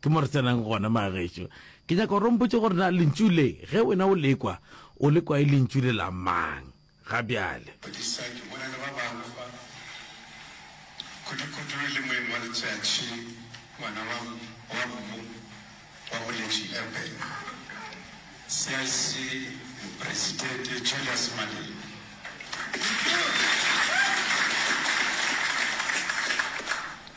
Ke mo re tsenang gona, Magaešo. Ke nyaka gore o mpotše gore na lentšu le, ge wena o lekwa, o lekwa e lentšu le la mang ga bjale? Phedisa, ke bona le ba bangwe ba, kudukudu le moeng wa letšatši, ngwana wa, wa mmu wa boletši Eben, CIC Mopresidente Julius Malema. Eupša.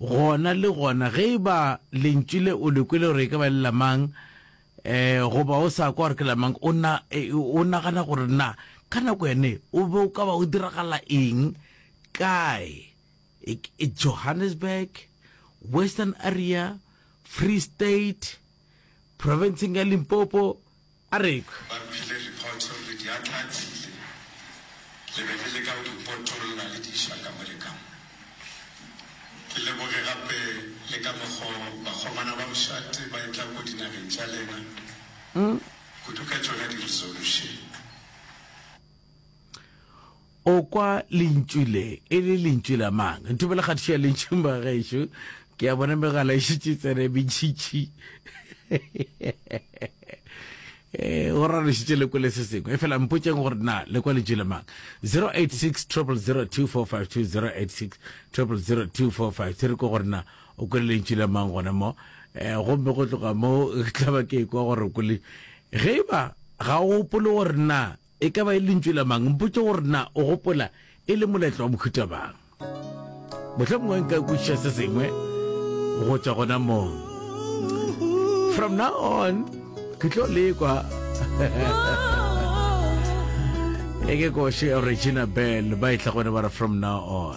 Gona le gona, ge e ba Lentšu le o le kwele gore e ka ba le la mang, goba o sa kwa gore ke la mang, o na, o nagana gore na ka nako yane o be o ka ba o diragala eng, kae, Johannesburg, Western Area, Free State, Profenseng ya Limpopo, A re ekwe. Ba kwile liphoto le diatlaatsile le be le leka go di potolla le di iša ka mo le ka mo. Ke leboge gape le ka mokgo bakgomana ba bošate ba etlago dinageng tša lena, kudu ka tšona di-resolution. O kwa lentšu le e le lentšu la mang? Ntho bela kgatišo ya lentšung ba gešo. Ke ya bona megala e šitše tsena e mentšhitši. Eh, go rana šitše le kwele se sengwe e fela mpotšeng gore na le kwa lentšu la mang 086 0002452 086 re ko gore na o kwele lentšu la mang gona mo eh, gomme go tloga mo tlaba ke kwa gore o kwele ge e ba ga o gopole gore na E ka ba e le lentšu la mang? Mpotše gore na o gopola e le molaetla wa mohuta mang. Mohlomongwe nka kwešiša se sengwe go tšwa gona moo. From now on, ke tlo lekwa. e ke koše Regina Bell ba e tlhagone ba re from now on.